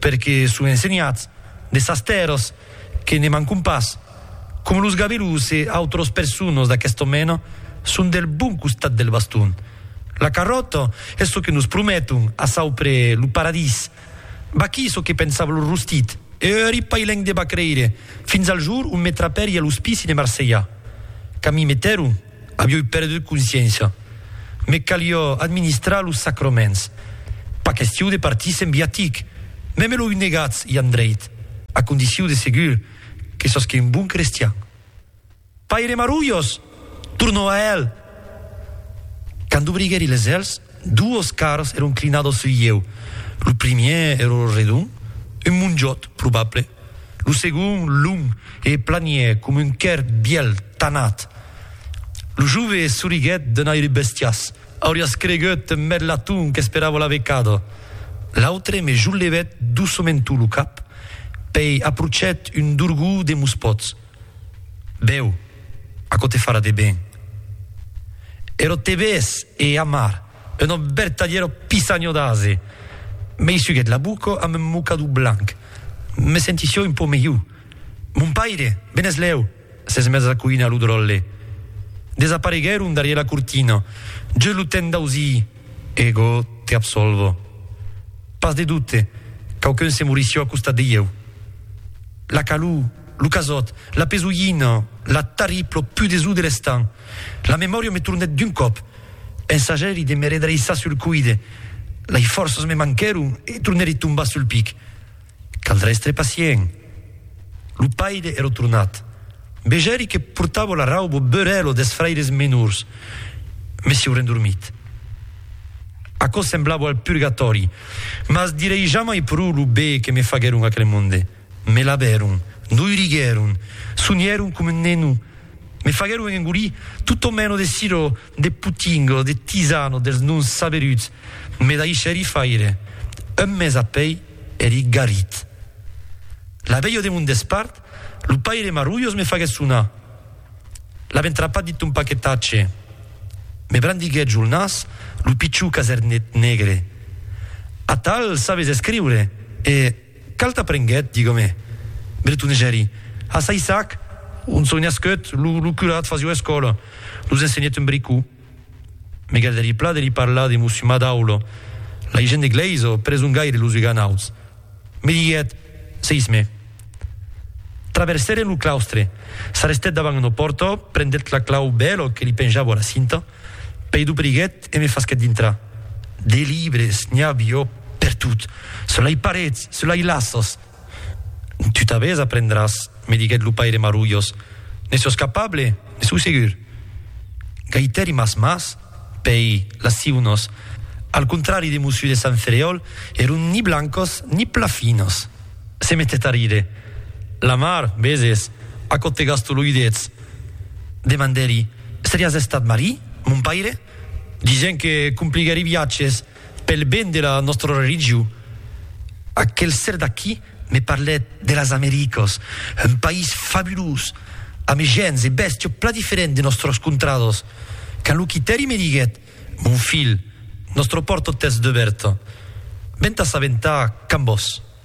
Perque son ensenhats de sas tèrras que ne mancon pas, com los gabelos e autros personos d'aquesta mena son del bon costat del baston. La carròta es çò que nos prometon a saupre lo paradís. Vaquí çò que pensava lo rostit, Euri pailhenc de bacreire, fins al jor ont me trapèri a l'ospici de Marselha. Quand m'i meteron. Avioi perdut consciéncia. Me calió administrar los sacraments. Pas questiu de partir sen viatic. Mès me l'oi negatz, i andreit, a condiciu de segur que sosque un bon crestian. Paire Marulhos! tornó a hèl. Quand dobriguèri les hèls, Duos carrs èron clinados sul lieu. Lo primièr èra redon, un monjòt, probable. Lo segond, long e planièr coma un quèrr bièl tanat. Lo jove soriguèt d'un aire bestias. Auriás cregut un merlaton qu'esperava la vecada. L'autre me jollevèt doçament lo cap, pei aprochet un dorgó de mos pòts. Bèu, aquò te farà de ben. Ero tebés e amar, una vertadièra pisanhò d'ase, m'eissuguèt la boca amb un mocador blanc. Me sentissi un pauc melhor. Mon paire, benèslèu, s'es mes a coinar lo dròlle. Desapareguèron darrièr la cortina, just lo temps d'ausir Ego te absolvo. Pas de dubte, quauqu'un se morissió a costat de ieu. La calor. Lo casòt, la pesolhina, la tarriplo pudesó de l'estan. La memòria me tornèt d'un còp. Pensagèri de me redreissar sul coide. Lei fòrças me manquèron e tornèri tombar sul pic. Caldrà èstre pacient. Lo paire èra tornat. Vegèri que portava la rauba beurèla des fraires menors. Me sieu rendormit. Aquò semblava al purgatòri. Mas direi jamai pro lo be que me faguèron aquel monde. Me lavèron, noiriguèron, sonièron com un neno, me faguèron engolir totò meno de sirò, de potinga, de tisana, dels nons saberuts, me daishèri faire. Un mes apèi èri garit. La velha de mon despart, lo paire Marrulhos me faguèt sonar. L'avèn trapat dins ton paquetatge. Me brandiguèt jo el nas, lo pichon casernèt negre. Atal sabes escriure e. Cal t'aprenguèt, digam-e, bretonejari. A Saissac, ont soi nascut, lo curat fasió escòla, nos ensenhèt un bricó. Me galdarie pla de li parlar de Mossiu Madaul, l'agent de glèis o presongaire de los uganauts. Me diguèt, Seisme. Traversèren lo claustre. S'arrestèt davant una pòrta, prendèt la clau bèla que li penjavo a la cinta. Pei dobriguèt e me fasquèt dintrar. De libres, n'i avió per tot, selai parets, selai laços. Tu t'avés a prendràs, me diguèt lo paire Marulhos. Ne sòs capable? Ne sou segur? Gaitèri mas mas, pei, las siunos, al contrari de Mossú de Sant Ferèol, èron ni blancos ni pla finos. Se metèt a rire. La mar, veses, aquò te gasto lo udets. Devant d'eri, seriás estat Marie, mon paire? Dixent que compliguèri viatges pel ben de la nòstra religion. Aquel ser d'aquí me parlèt de las Americas, un país fabulós, amb gents e bèstia plan diferents de nòstras contradas. Quand lo quitèri me diguèt, Mon filh, nòstra pòrta t'es dubèrta. Ventàs aventar quand vòs.